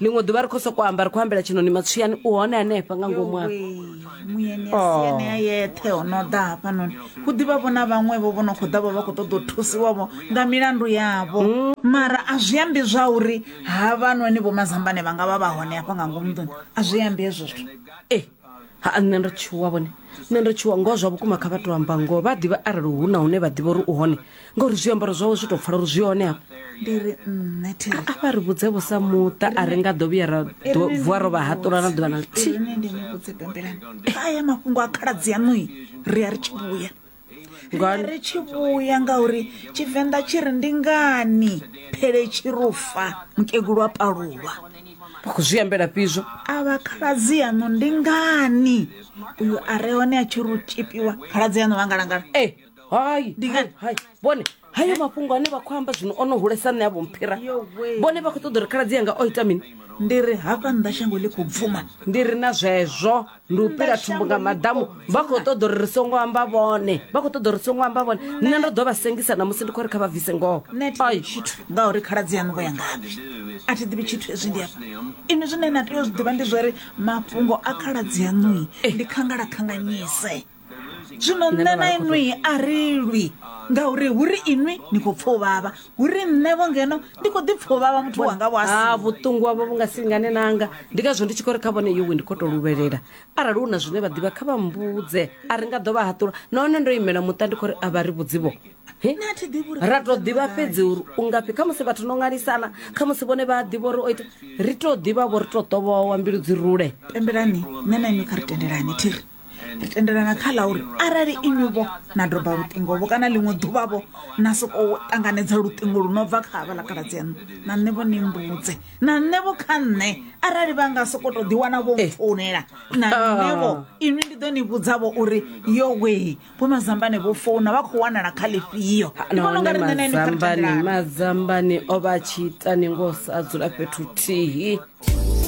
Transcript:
ḽiṅwe ḓuvha ri khou sokou amba ri khou ambela tshinoni matswiyani u hone hanefha nga ngomu afha muyeni a si anea yeṱhe o no ḓa hafhanoni hu ḓivha vho na vhaṅwevho vho no khou ḓa vha vha khou ṱoḓa u thusiwavho nga milandu yavho mara a zwi ambi zwa uri havhanoni vho mazambane vha nga vha vha hone hafha nga ngomu nḓuni a zwi ambi hezwo zwithu ha nṋe ndo tshuwa vhone nṋe ndo tshuwa ngoho zwa vhukuma kha vha to amba ngoho vha ḓivha arali hu na hune vha ḓivha uri u hone ngauri zwiambaro zwawe zwi tou pfala uri zwi hone hafha ndi ri nṋe thiri a vha ri vhudze vho sa muṱa a ri nga ḓo vhuya ra ḓo- vuwa ro vha haṱula na ḓuvha na ḽithihi ine ndi ni vhudze bembelani kha aya mafhungo a khaladzi yaṋui ri a ri tshi vhuya nga ri tshi vhuya ngauri tshivenḓa tshi ri ndi ngani phele tshi rufa mukegulu wa palulwa vha khou zwi ambela fhizwo a vha khaladzi yaṋu ndi ngani uyu a re hone a tshi ru tshipiwa khaladzi yaṋu vha ngalangala e hai ndi ngani hai vhone hayo mafhungo ane vha khou amba zwino o no hulesa nṋe a vho mphira vhone vha khou ṱoḓa uri khaladzi yanga o ita mini ndi ri hafha nnḓa shango ḽi khou bvuma ndi ri na zwezwo ndi u pila thumbu nga maḓamu vha khou ṱoḓa uri ri songo amba vhone vha khou ṱoḓa uri ri songo amba vhone nṋe ndo ḓo vha sengisa namusi ndi khou ri kha vha bvise ngoho nṋe thi ḓivhi tshithu ngauri khaladzi yaṋu vho ya ngafhi a thi ḓivhi tshithu hezwi ndi afha inwi zwine na tea u zwi ḓivha ndi zwa uri mafhungo a khaladzi yaṋui ndi khangalakhanganyise zwino nṋe na inwi a ri lwi ngauri hu ri inwi ni khou pfa u vhavha hu ri nṋevho ngeno ndi khou ḓi pfa u vhavha muthu wanga vho asi ha vhuṱungu havho vhu nga si lingane nanga ndi ngazwo ndi tshi khou ri kha vhone yowe ndi khou tou luvhelela arali hu na zwine vha ḓivha kha vha mbudze a ri nga ḓo vha haṱula nahone ndo imela muṱa ndi khou ri a vha ri vhudzivho He? Nṋe a thi ḓivhi uri ra tou ḓivha fhedzi uri u ngafhi kha musi vhathu no ṅwalisana kha musi vhone vha a ḓivha uri o ita ri tou ḓivha vho ri tou ṱovhowa mbilu dzi rule pembelani nṋe na inwi kha ri tendelani thiri ndi tendelana kha ḽa uri arali inwi-vho na doba luṱingo-vho kana ḽiṅwe ḓuvha-vho na sokou ṱanganedza luṱingo lu no bva kha havha ḽa kaladzi yaṋu na nṋe-vho ni mbudze na nṋe-vho kha nṋe arali vha nga soko tou ḓiwana vho eh. founela na ah. nṋe-vho inwi ndi ḓo ni vhudza-vho uri yo wee vho mazambane vho founa vha khou wanala kha ḽifhio ah, ndi vhona unga ri nṋe na inwi mazambane o vha a tshi ita ni ngo sa dzula fhethu thihi